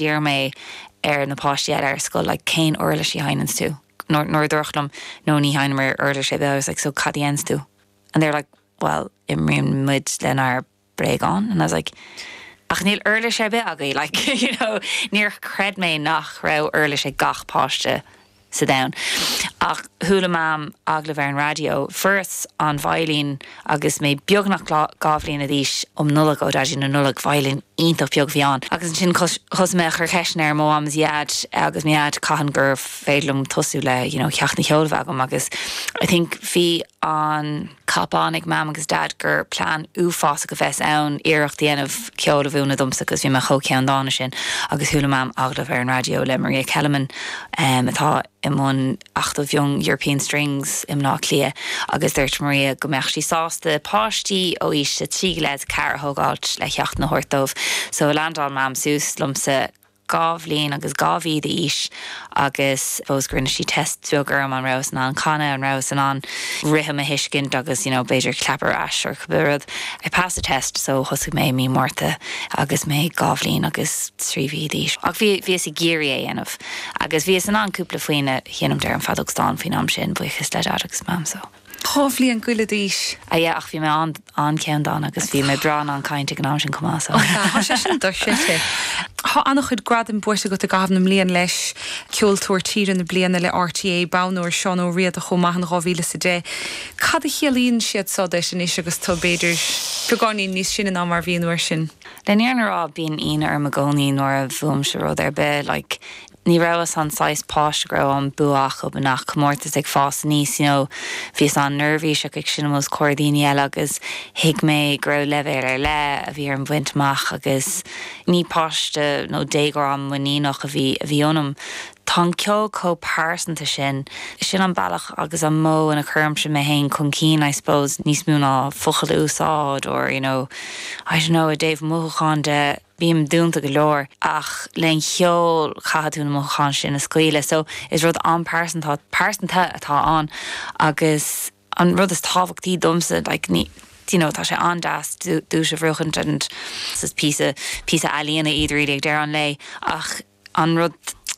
d'iarr mé ar na páistí eile ar scoil like cén uirlis a sheinneanns tú nuair a dúradh liom no ní sheinneamar uirlis ar bith I was like so cad a dhéanns tú and they were like well imríonn muid lenár mbréagáin and I was like ach níl uirlis ar bith agaibh like you know níor chreid mé nach raibh uirlis ag gach páiste sa domhan. Ach chuala Mam agallamh ar an raidió, fuaireas an veidhlín, agus mé beagnach dhá bhliana d'aois, um Nollaig, ó Daidí na Nollag. Veidhlín iontach beag a bhí ann. Agus ansin thosaigh mé a chur ceisteanna ar mo Mham is Daid agus mo Dhaid cathain gur féidir liom tosú le, you know, ceachtanna ceoil a bheith agam agus I think bhí an, tuairim ag Mam agus Dad gur plean uafásach a bheas ann iarracht a dhéanamh ceol a mhúineadh domsa cos bhí mé chomh ceanndána sin agus chuala Mam agallamh ar an raidió le Maria Kelemen atá i mbun Acadamh Young European Strings i mBleá Cliath agus dúirt Maria go mbeadh sí sásta páistí ó aois a trí go leith is a ceathair a thógáilt le ceachtanna a thabhairt dóibh so leaindeáil Mam suas liomsa dhá bhliain agus dhá mhí d'aois agus basically rinne sí test beag orm an rabhas in ann canadh, an rabhas in ann rithim a thuiscint agus you know b'fhéidir clap ar ais or cibé rud. I passed the test so thosaigh mé i mí Márta agus mé dhá bhliain agus trí mhí d'aois. Ach bhí, bhíos ag iarraidh é dhéanamh agus bhíos in ann cúpla foinn a sheinm ar an bh feadóg stáin faoin am sin, buíochas le Dad agus Mam so. Dhá bhliain go leith d'aois. Ah yeah, ach bhí mé an-cheanndána agus bhí mé breá in ann caint ag an am sin chomh maith, so. Tá, tá sé sin dochreidte. Tá an-chuid gradaim buaite agat i gcaitheamh na mblian leis, Ceoltóir Tíre na Bliana le RTÉ, Bonn Óir Seán Ó Riada chomh maith in 2010. Cad a chiallaíonn siad seo duit anois agus tú, b'fhéidir, beagáinín níos sine ná mar bhí an uair sin? Le fírinne a rá, bíonn ionadh orm i gcónaí nuair a bhuaimse rud ar bith, like, Ní rabhas mar an saghas páiste go raibh an bua acu i ngach comórtas ag fás aníos, you know, bhíos an-neirbhíseach ag seinm os comhair daoine eile agus thuig mé go raibh leibhéal ar leith a bhí orm bhaint amach agus ní páiste nó déagóir an-mhuiníneach a bhí a bhí ionam. Tá an ceol chomh pearsanta sin. Sin an bealach agus an modh ina chuirimse mé féin chun cinn, I suppose, níos mó ná focail a úsáid or, you know, I don't know, i dtaobh mothúcháin de, Bím dúnta go leor ach leis an gceol caithfidh tú na mothúcháin sin a scaoileadh so is rud an-phearsanta pearsanta atá ann agus an rud is tábhachtaí domsa like ní do you know tá sé an-deas duais a bhuachaint and it's píosa píosa ealaíona iad really ag deireadh an lae ach An rud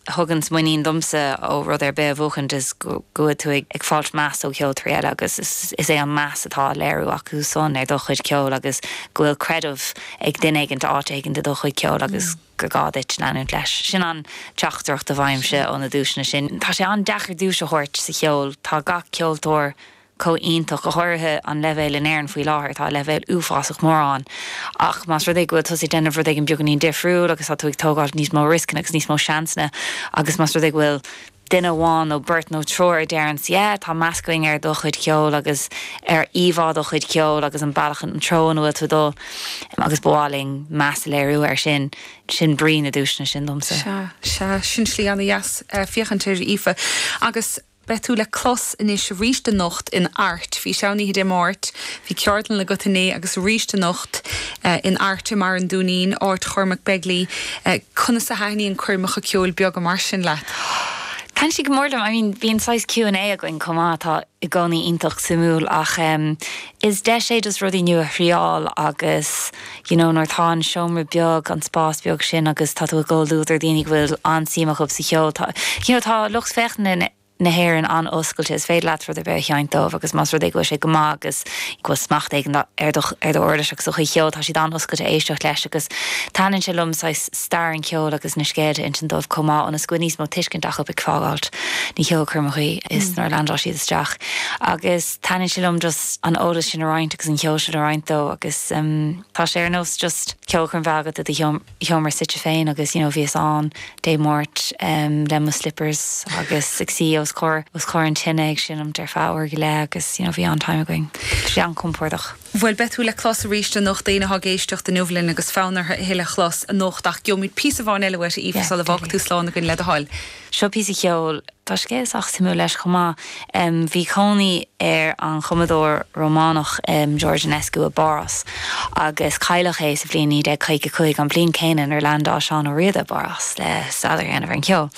a thuganns muinín domsa ó rud ar bith a bhuachaint is go bhfuil tú ag fáilt meas ó cheoltóirí eile agus is é an meas atá á léiriú acu san ar do chuid ceoil agus go bhfuil creideamh ag duine éigint áit éigint i do chuid ceoil agus gur gá duit leanúint leis. Sin an teachtaireacht a fhaighimse ó na duaiseanna sin. Tá sé an-deacair duais a thabhairt sa cheol. Tá gach ceoltóir chomh iontach, go háirithe an leibhéal in Éirinn faoi láthair, tá leibhéal uafásach mór ann. Ach más rud é go bhfuil tusa ag déanamh rud éigin beagáinín difriúil agus tá tú ag tógáil níos mó rioscanna agus níos mó seansanna agus más rud é go bhfuil duine amháin nó beirt nó triúr a deireanns yeah, tá meas againn ar do chuid ceoil agus ar íomhá do chuid ceoil agus an bealach, an treo ina bhfuil tú ag dul agus ba mhaith linn meas a léiriú air sin, sin brí na duaiseanna sin domsa. Sea, sea, sin slí ana dheas féachaint air a Aoife. Agus. Beidh tú le clos anois aríst anocht in Airt. Bhís ann oíche Dé Máirt. Bhí ceardlann agat inné agus aríst anocht in Airt i mBarr an Dúinín, áit Chormac Begley. Conas a thaithníonn na coirmeacha ceoil beaga mar sin leat? Taitníonn siad go mór liom. I mean bíonn saghas Q and A againn chomh maith atá i gcónaí iontach suimiúil ach is deis é just rudaí nua a thriáil agus you know nuair atá an seomra beag an spás beag sin agus tá tú i gcomhluadar daoine go bhfuil an-suim acub sa cheol tá you know tá lucht féachana na hÉireann an-oscailte is féidir leat rud ar bith a sheinnt dóibh agus más rud é go bhfuil sé go maith agus go bhfuil smacht éigin ar do ar do uirlis agus do chuid cheoil tá siad an-oscailte éisteacht leis agus taitníonn sé liom saghas stair an cheoil agus na scéalta insint dóibh chomh maith ionas go bhfuil níos mó tuiscint acub ag fágáilt na ceolchoirme ach is nuair a leaindeáil siad isteach agus Taitníonn sé liom just an t-eolas sin a roinnt agus an ceol sin a roinnt leo agus tá sé ar nós just ceolchoirm bheith agat i do sheomra suite féin agus you know bhíos ann Dé Máirt le mo slippers agus ag suí os comhair os comhair an tine ag seinm ar feadh uair go leith agus you know bhí an-time againn. Bhí sé an-compordach. Bhuel beidh tú le clos arís anocht, éinne atá ag éisteacht inniu linn agus fonn orthu tuilleadh a chlos anocht ach gheobhaimid píosa amháin eile uait a Aoife sula bhfágfaidh tú slán againn le do thoil. Seo píosa ceoil. Tá scéal sách suimiúil leis chomh maith. Bhí cónaí ar an chumadóir Rómánach George Enescu i bPárás agus cailleadh é sa bhliain 1955, an bhliain céanna nuair leaindeáil Seán Ó Riada i bPárás le staidéar a dhéanamh ar an cheol.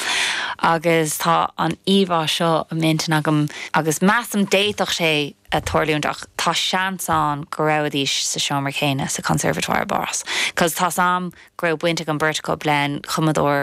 Agus tá an íomhá seo i m'intinn agam agus measaim d'fhéadfadh sé a tharlúint ach tá seans ann go rabhaidís sa seomra céanna sa Conservatoire i bPárás cos tá a fhios agam go raibh baint ag an beirt acub le cumadóir